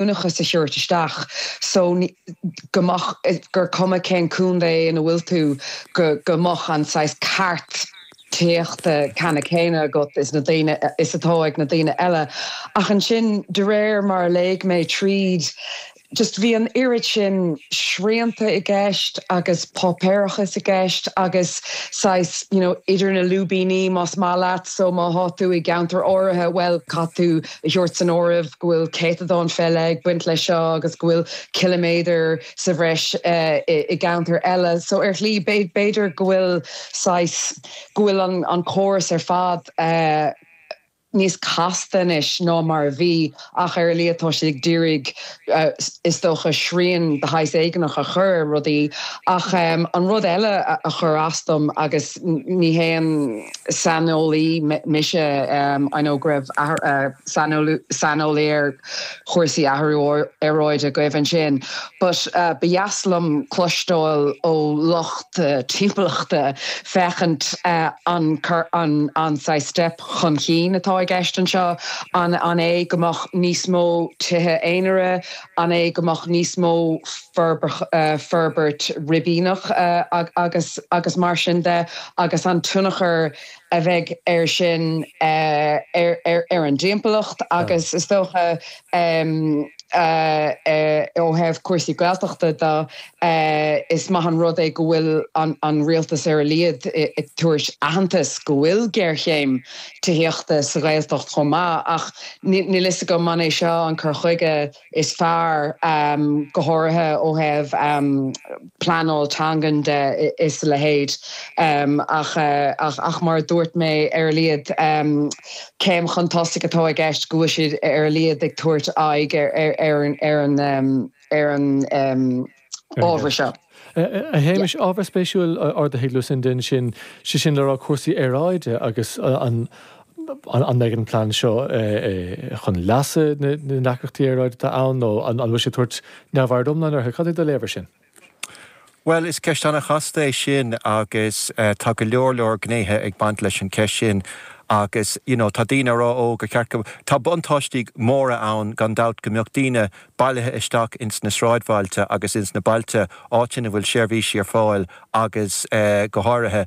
leanúnachas a thabhairt isteach so go mbeadh, gur cuma cén contae ina bhfuil tú, go mbeadh an saghas ceart tithíochta ceanna céanna agat is na daoine, is atá ag na daoine eile. Ach ansin de réir mar a léigh mé tríd, just bhí an oiread sin srianta i gceist agus páipéarachas i gceist agus saghas, you know, idir na lúibíní más maith leat, so má thá tú i gceantar áirithe, bhuel, caithfidh tú, a thabhairt san áireamh go bhfuil céatadán faoi leith ag baint leis seo agus go bhfuil ciliméadar sa bhreis i gceantar eile. So ar shlí b'fhéidir go bhfuil saghas, go bhfuil an córas ar fad níos casta anois ná mar a bhí ach ar a laghad tá siad ag d'iarraidh is dócha, srian de shaghas éigineach a chur ar rudaí. Ach an rud eile a chuir as dom, agus ní haon saineolaí mise, I know go raibh sain saineolaí ar chúrsaí athrú aeráide agaibh ansin, but ba dheas liom cloisteáil ó lucht timpeallachta féachaint an an saghas step, chun cinn atá i gceist anseo. An é go mbeadh níos mó tithe aonaire, an é go mbeadh níos mó fo forbairt ribíneach agus agus mar sin de agus an tionchar a bheidh ar sin ar an dtimpeallacht agus is dócha Sea, ó thaobh cúrsaí Gaeltachta de, is maith an rud é go bhfuil an Rialtas ar a laghad ag tabhairt aitheantais go bhfuil géarchéim tithíochta sa Ghaeltacht chomh maith, ach níl 'fhios agam an é seo an cur chuige is fearr, go háirithe ó thaobh. pleanáil teangan de is a leithéid. Ach ach mar a dúirt mé ar a laghad céim chun tosaigh atá i gceist go bhfuil siad ar a laghad ag tabhairt aghaidh ar ar an ábhar seo. A Shéamais, ábhar spéisiúil ardaithe ag Lucinda ansin, sé sin le rá cúrsaí aeráide agus an an mbeidh an plean seo chun leasa na ndeacrachtaí aeráide atá ann nó an bhfuil sé ag tabhairt neamhaird iomlán orthu? Cad é do léamh air sin? Bhuel, is ceist an-chasta é sin agus tá go leor leor gnéithe ag baint leis an cheist sin agus you know tá daoine a rá ó gur cheart go, tá buntáistí móra ann gan dabht go mbeadh daoine bailithe isteach ins na sráidbhailte agus ins na bailte, áit ina bhfuil seirbhísí ar fáil agus go háirithe,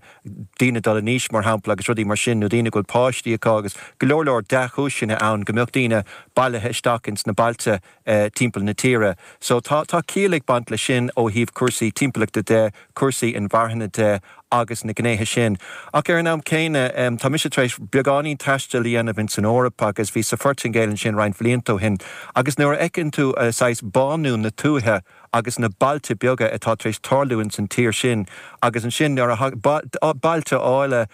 daoine dul in aois, mar shampla, agus rudaí mar sin, nó daoine a bhfuil páistí acu, agus go leor leor dea-chúiseanna ann go mbeadh daoine bailithe isteach ins na bailte timpeall na tíre. So tá, tá ciall ag baint leis sin ó thaobh cúrsaí timpeallachta de, cúrsaí inmharthana de agus na gnéithe sin. Ach ar an am céanna, tá mise tar éis beagáinín taistil a dhéanamh ins an Eoraip agus bhíos sa Phoirtingéil ansin roinnt bhlianta ó shin agus nuair a fheiceann tú saghas bánú na tuaithe, agus na bailte beaga atá tar éis tarlú ins an tír sin agus ansin nuair a thagann, bailte áille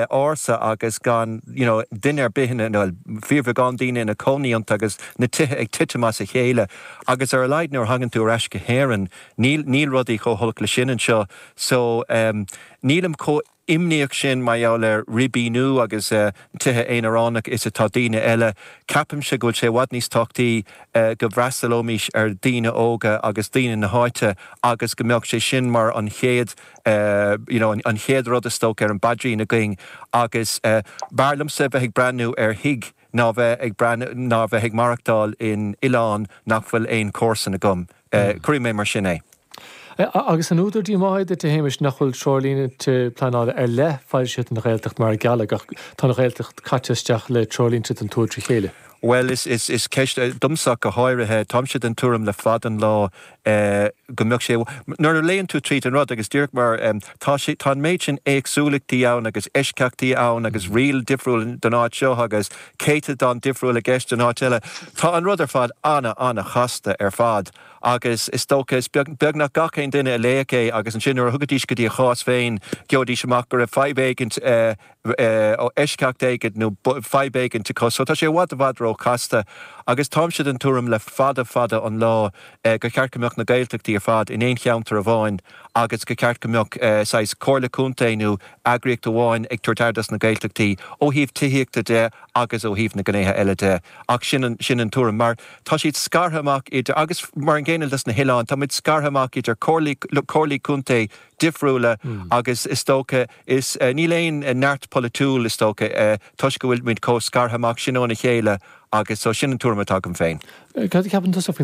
ársa agus gan you know duine ar bith ina, bhuel fíorbheagán daoine ina cónaí iontu agus na tithe ag titim as a chéile agus ar a laghad nuair a thagann tú ar ais go hÉireann níl, níl rudaí chomh holc leis sin anseo so ehm nílim chomh imníoch sin mar gheall ar ribíniú agus tithe aonaránacha is atá daoine eile. Ceapaimse go bhfuil sé i bhfad níos tábhachtaí go bhfreastalóimís ar daoine óga agus daoine na háite agus go mbeadh sé sin mar an chéad you know an chéad rud is dócha ar an bpaidrín againn agus b'fhearr liomsa bheith ag breathnú ar thigh ná bheith ag breathnú ná bheith ag maireachtáil in oileán nach bhfuil aon comharsain agam. Sea, cuirfidh mé mar sin é. Agus an údar díomá duit, a Shéamais, nach bhfuil treoirlínte pleanála ar leith foilsithe don Ghaeltacht mar a gealladh, ach tá an Ghaeltacht caite isteach le treoirlínte don tuath trí chéile. Bhuel, is ceist, domsa ach go háirithe, táimse den tuairim le fada an lá go mbeadh sé, nuair a léann tú tríd an rud, agus díreach mar tá sé, tá an méid sin éagsúlachtaí ann agus eisceachtaí ann agus riail difriúil don áit seo agus. céatadán difriúil i gceist in áit eile. Tá an rud ar fad ana, ana-chasta ar fad agus is dócha, is beag, beag nach gach aon duine a léadh é agus ansin nuair a thagaidís go dtí a chás féin gheobhaidís amach go raibh fadhb éigint, eisceacht éigint nó fadhb éigint acu. So tá sé i bhfad, i bhfad ró-chasta agus táimse den tuairim le fada, fada an lá gur cheart go mbeadh na Gaeltachtaí ar fad in aon cheantar amháin agus gur cheart go mbeadh saghas Comhairle Contae nó. eagraíocht amháin ag tabhairt aire dos na Gaeltachtaí ó thaobh tithíochta de agus ó thaobh na gnéithe eile de ach sin an sin an tuairim mar tá siad scartha amach idir agus mar an gcéanna dos na hoileáin tá muid scartha amach idir comhairlí comhairlí contae difriúla agus is dócha is níl aon neart polaitiúil is dócha toisc go bhfuil muid chomh scartha amach sin óna chéile agus so sin an tuairim atá agam féin. Cad a cheapann tusa faoin.